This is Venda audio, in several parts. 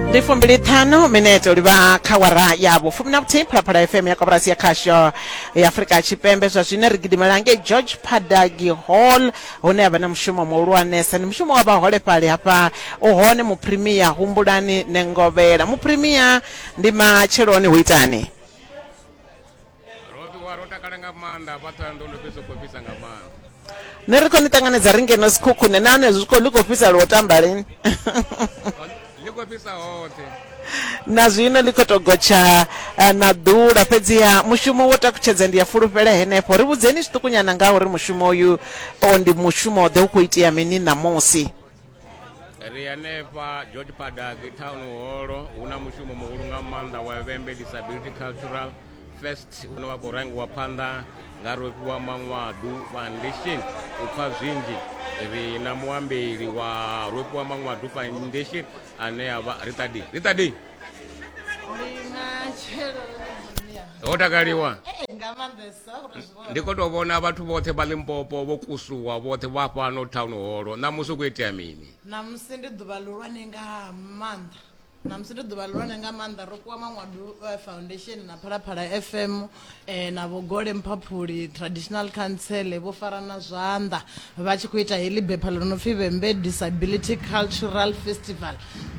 ndi fumbili ṱhanu minete u livha kha wara ya vhufumi na vhuthihi phalaphala fm ya koporasi ya khasho ya afurika tshipembe zwa zwine ri gidimela ngei george padagi hall hune ya vha na mushumo muhulwanesa ndi mushumo wa vhaholefhali hafha u hone muphirimiya humbulani nengovhela muphirimiya ndi matsheloni hu itani roṱiwa ro takala nga maanḓa hafha ṱhoyandou ndo fhedza u khou fhisa nga maanḓa ne ri khou ni ṱanganedza ri ngeno sikhukhune na hone zwi khou ḽi khou fhisa lwo tamba lini ḽi khou fhisa hoṱhe na zwino ḽi khou tou gotsha eh, na ḓula fhedziha mushumo wo takutshedza ndi ya fulufhela henefho ri vhudzeni zwiṱukunyana nga uri mushumo uyu o ndi mushumo ḓe u khou itea mini ṋamusi ri hanefha george padaki town holo hu na mushumo muhulu nga maanḓa wa vhembe disability cultural fest une wa khou rangiwa phanḓa nga rofhiwa maṅwadu foundation u pfha zwinzhi ri na muambeli wa rofhiwa maṅwadu foundation ane ya vha ritadi ritadi ho takaliwa eh, nga maanḓesa uri Ndi khou tou vhona vhathu vhoṱhe vha Limpopo vho kusuwa vhoṱhe vha fhano town holo. Ṋamusi hu khou itea mini? Ṋamusi ndi ḓuvha ḽihulwane nga maanḓa. Ṋamusi ndi ḓuvha ḽihulwane nga maanḓa ro fhiwa Maṅwadu Foundation na Phalaphala FM na Vho Gole Mphaphuli Traditional Council vho farana zwanḓa vha tshi khou ita heḽi bepha ḽo no pfi Vhembe Disability Cultural Festival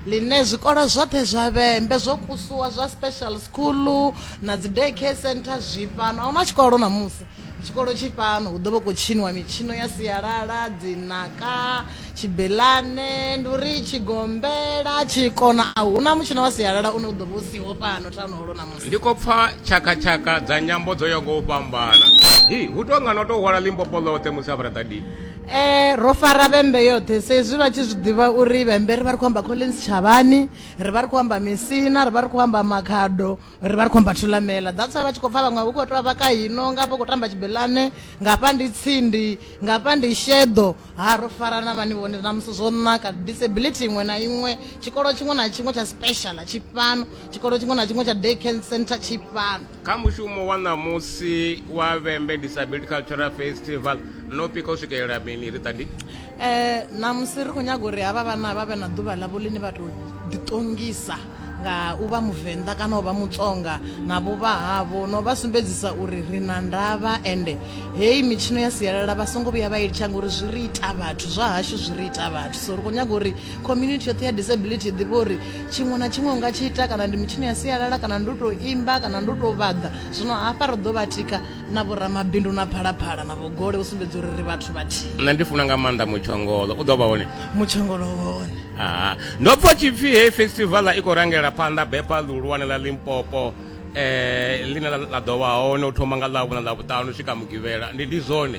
ḽine zwikolo zwoṱhe zwa Vhembe zwo kusuwa zwa special school na dzi day care center zwi fhano. A hu na tshikolo ṋamusi, tshikolo tshi fhano. Hu ḓo vha hu khou tshiniwa mitshino ya sialala, dzinaka, tshibelane, ndi uri tshigombela, tshikona. A hu na mutshino wa sialala une u ḓo vha u siho fhano Town Hall ṋamusi. Ndi khou pfa tshakha-tshakha dza nyambo dzo yaho nga u fhambana. Hi, hu tou nga no tou hwala Limpopo ḽoṱhe musi a fharaḓa di. Eh, ro fara vhembe yoṱhe sa izwi vha tshi zwi ḓivha uri vhembe ri vha ri khou amba Collins Tshavhani, ri vha ri khou amba Misina, ri vha ri khou amba Makhado, ri vha ri khou amba Thulamela. That's why vha tshi khou pfa vhaṅwe hu khou tou vha kha hino, nga hafha hu khou tamba Tshibelane, nga hafha ndi Tsindi, nga hafha ndi Sheḓo, ha ro farana vhani vhone na musi zwo naka disability iṅwe na iṅwe tshikolo tshiṅwe na tshiṅwe tsha special tshi fhano tshikolo tshiṅwe na tshiṅwe tsha day care center tshi fhano kha mushumo wa ṋamusi wa vhembe disability cultural festival no pika u swikelela mini ri ṱandi um ṋamusi ri khou nyaga uri havha vhana vha vhe na ḓuvha ḽavho ḽine vha tou ḓiṱongisa nga u vha muvenḓa kana u vha mutsonga na vhuvha havho no vha sumbedzisa uri ri na ndavha ende heyi mitshino ya sialala vha songo vhuya vha i litsha ngori zwi ri ita vhathu zwa hashu zwi ri ita vhathu so ri khou nyaga uri community yoṱhe ya disability i ḓivhe uri tshiṅwe na tshiṅwe unga tshi ita kana ndi mitshino ya sialala kana ndi u tou imba kana ndi u tou vhaḓa zwino hafha ri ḓo vha tika na vhoramabindu na phalaphala na vhogole u sumbedza uri ri vhathu vhathihi nṋe ndi funa nga maanḓa mutshongolo u ḓo vha hone mutshongolo hone aa ndo pfa tshipfi heyi festivala i khou rangela phanḓa bepa ḽihulwane ḽa limpopo um ḽine ḽa ḓo vha hone u thoma nga ḽavhuna ḽa vhuṱanu swika mugivhela ndi ndi zwone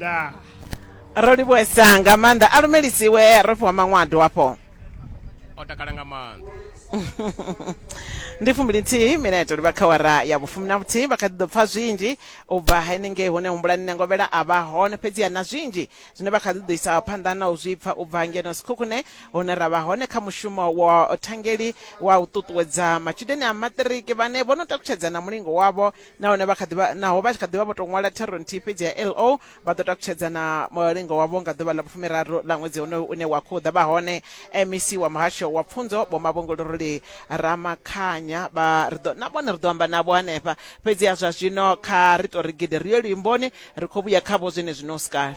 ḓa ro livhuesa nga maanḓa a lumelisiwe ro fhiwa maṅwado hafho o takala nga maanḓa ndi fumbili nthihi mineto livha kha wara ya vhufumi na vhuthihi vha kha ḓi ḓo pfa zwinzhi u bva henengei hune humbulani nangovhela a vha hone fhedziha na zwinzhi zwine vha kha ḓi ḓo isa phanḓa na u zwi pfa u bva ngeno sikhukhune hune ra vha hone kha mushumo wa thangeli wa u ṱuṱuwedza matshudeni a maṱiriki vhane vho no takutshedza na mulingo wavho nahone vha kha ḓivha naho vha tshi kha ḓivha vho tou ṅwala thero nthihi fhedzi ya lo vha ḓo takutshedza na mulingo wavho nga ḓuvha ḽa vhufumiraru ḽa ṅwedzi honoyo une wa khou ḓa vha hone mec wa muhasho wa pfunzo vho mavhongoloroli ramakhanya vha ri ḓo na vhone ri ḓo amba navho hanefha fhedzi ya zwa zwino kha ri tou ri gidi ri yo luimboni ri khou vhuya khavho zwine zwino sikale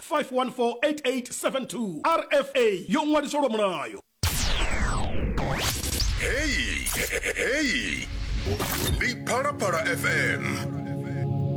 5148872 rfa yo ṅwaliswa lwa mulayo heyi heyi ndi phalaphala fm